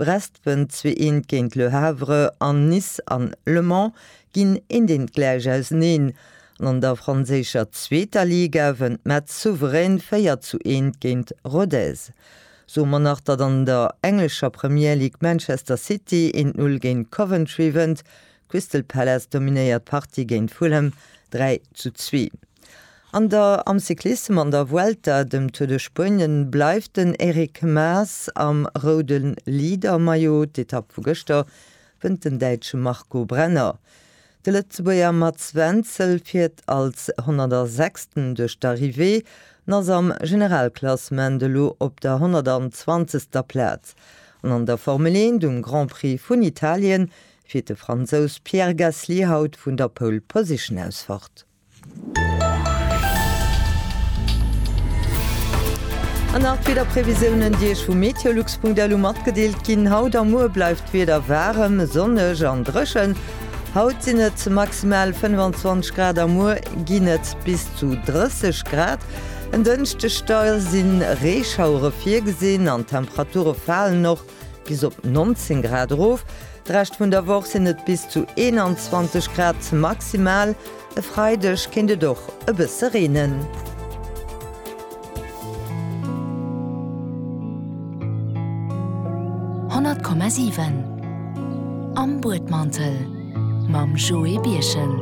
Brest wënnt zwee eent géint Le Havre an Nice an Le Mans ginn eent eent gläich auseneen. An an der franséischer zweeter Liga wënnt Metz souverän 4 zu eent géint Rodez. Soe mer nach, datt an der englescher Premier League Manchester City eent Null géint Coventry wënnt. Crystal Palace dominéiert d'Partie géint Fulham 3 zu zwee. An der am Cyclissem an der Vuelta, dem Tour de Spuenien, bleift den Eric Maes am roude Leader-Maillot. D'Etapp vu gëschter wënnt den Däitsche Marco Brenner. De Lëtzebuerger Mats Wenzel fiert als 106. duerch d'Arrivée an ass am Generalklassement elo op der 120. Plaz. An an der Formel Eent um Grand Prix vun Italien fiert de Fransous Pierre Gasly haut vun der Pole Position aus fort. An nach d'Wiederprevisiounen, déi Iech vu Meteolux.lu matgedeelt ginn. Haut a muer bleift d'Wieder waarem, sonneg an dréchen. Haut sinn et maximal 25 Grad a muer ginn et bis zu 30 Grad. En Dënschdeg da sinn Reeschauere virgesinn an d'Temperature falen och. Bis op 19 Grad erof, de Rescht vun der Woch sinn et bis zu 21 Grad maximal, e Freideg kéint et och e bësse reenen. Honnert Komma siwen Am Buedmantel mam Joé Birchen.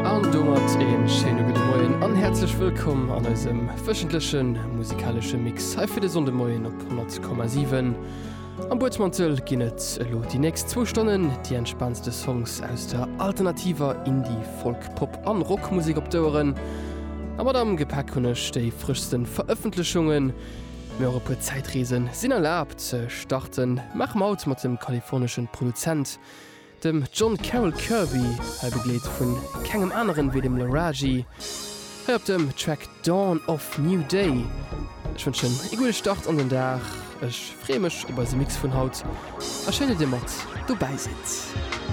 An domat ee schéine gudde Moien an häerzlech wëllkomm an eisem wéchentleche musikalesche Mix hei fir de Sonndemoien op 100,7. Am Buetzmantel ginn et elo déi nächst zwou Stonnen déi entspaantste Songs aus der alternativer Indie, Folk, Pop an Rockmusek op d'Oueren. A mat am Gepäck hunn ech déi frëschsten Verëffentlechungen. Mee och e puer Zäitreesen sinn erlaabt. Starten maache mer haut mat dem kaliforneschen Produzent. Dem John Carroll Kirby, hei begleet vu kengem aneren ewéi dem Laraji, hei op dem Track Dawn of New Day. Ech wënschen ee gudde Start an den Dag, ech freeë mech op eise Mix vun haut a schéin datt dir mat dobäi sidd.